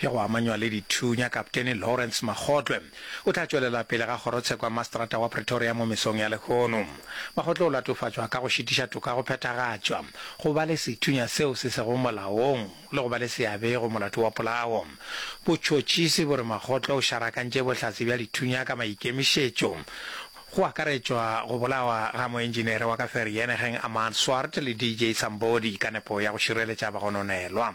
Ge go amanywa le dithunya, Kapteni Lawrence Magotlwe o tla tšwelela pele ga kgorotsheko ya mastrata wa Pretoria mo mesong ya lehono. Magotlwe o latofatšwa ka go šitiša toka go phethagatšwa, go ba le sethunya seo se sego molaong le go ba le seabe go molato wa polao. Botšhotšhisi bo re Magotlwe o šarakantše bohlatse bja dithunya ka maikemišetšo, go akaretšwa go bolawa ga moentšinere wa ka Vereeniging Amaan Swart le DJ Sambodi ka nepo ya go šireletša bagononelwa.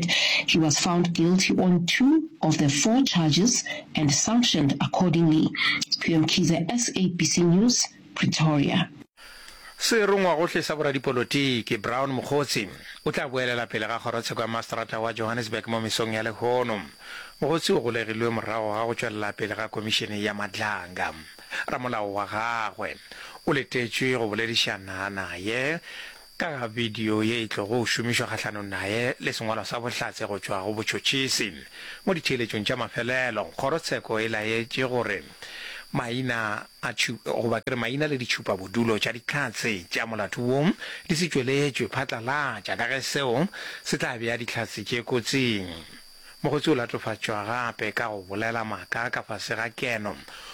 He was found guilty on two of the four charges and sanctioned accordingly. Phiyo Mkhize, SABC News, Pretoria. Se rongwagohle sa boradipolotiki, Brown Mogotsi, o tla boelela pele ga kgorotsheko ya maseterata wa Johannesburg mo mesong ya lehono. Mogotsi o golegilwe morago ga go tšwelela pele ga komišene ya Madlanga. Ramolao wa gagwe o letetšwe go boledišana naye Ka ga bidio ye e tlogo šomišwa kgahlanong naye le sengwalwa sa bohlatse go tšwa go botšhotšhisi. Mo ditheeletšong tša mafelelo, kgorotsheko e laetše gore maina a goba ke re maina le ditšhupabodulo tša dihlatse tša molato wo di se tšweletšwe phatlalatša ka ge seo se tla bea dihlatse tše kotsing. Mokgotsi o latofatšwa gape ka go bolela maaka ka fase ga keno,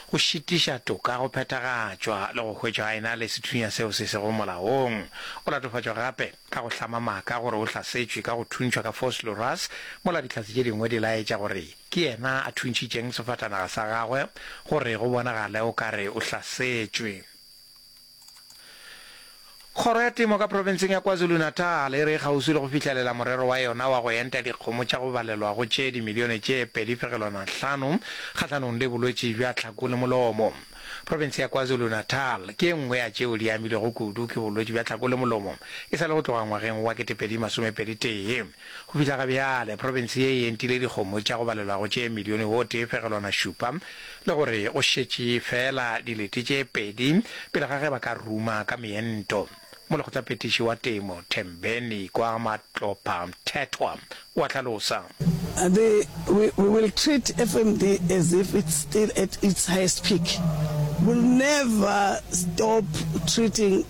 go šitiša toka go phethagatšwa le go hwetšwa a ena le sethunya seo se sego molaong. O latofatšwa gape ka go hlama maaka gore o hlasetšwe ka go thuntšhwa ka force loras mola Dihlatse tše dingwe di laetša gore ke yena a thuntšhitšeng sefatanaga sa gagwe gore go bonagale o ka re o hlasetšwe. Kgoro ya Temo ka Profenseng ya KwaZulu-Natal e re e kgauswi le go fihlelela morero wa yona wa go enta dikgomo tša go balelwa go tše dimilione tše pedi fegelwana hlano kgahlanong le bolwetši bja tlhako le molomo. Profense ya KwaZulu-Natal ke e nngwe ya tšeo di amilwego kudu ke bolwetši bja tlhako le molomo e sa le go tloga ngwageng wa ketepedi masomepedi tee. Go fihla ga bjale, profense ye e entile dikgomo tša go balelwago tše milione o tee fegelwana šupa le gore go šetše feela dilete tše pedi pele ga ge ba ka ruma ka meento. Molekgotlaphethiši wa Temo, Thembeni Kwamatlopha Mthethwa, o a hlalosa. The, we, we will treat FMD as if it's still at its highest peak. We'll never stop treating.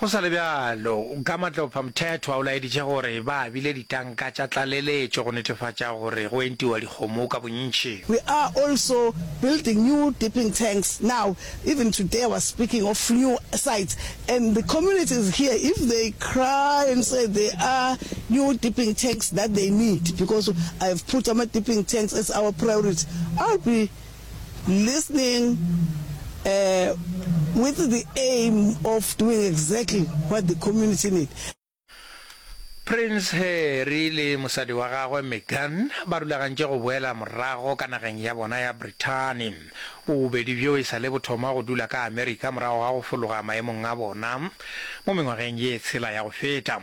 Go sa le bjalo, ka matlophamthethwa o laeditše gore ba abile ditanka tša tlaleletšo go netefatša gore go entiwa dikgomo ka bontši. We are also building new dipping tanks now, even today I was speaking of new sites and the communities here if they cry and say they are new dipping tanks that they need because I have put ama dipping tanks as our priority, I'll be listening with the aim of doing exactly what the community need. Prince Harry le mosadi wa gagwe Meghan ba rulagantše go boela morago ka nageng ya bona ya Brithani. Bobedi bjo e sa le bo thoma go dula ka Amerika morago ga go fologa maemong a bona mo mengwageng ye tshela ya go feta.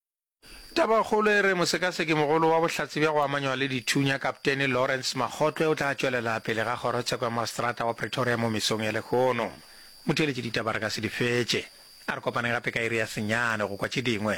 Tabakgolo e re mosekasekimogolo wa bohlatse bja go amanywa le dithunya Kapteni Lawrence Makgotlwe o tla tšwelela pele ga kgorotsheko ya maseterata wa Pretoria mo mesong ya lehono. Motheeletši ditaba re ka se di fetše. A re kopaneng gape ka iri ya senyane go kwa tše dingwe.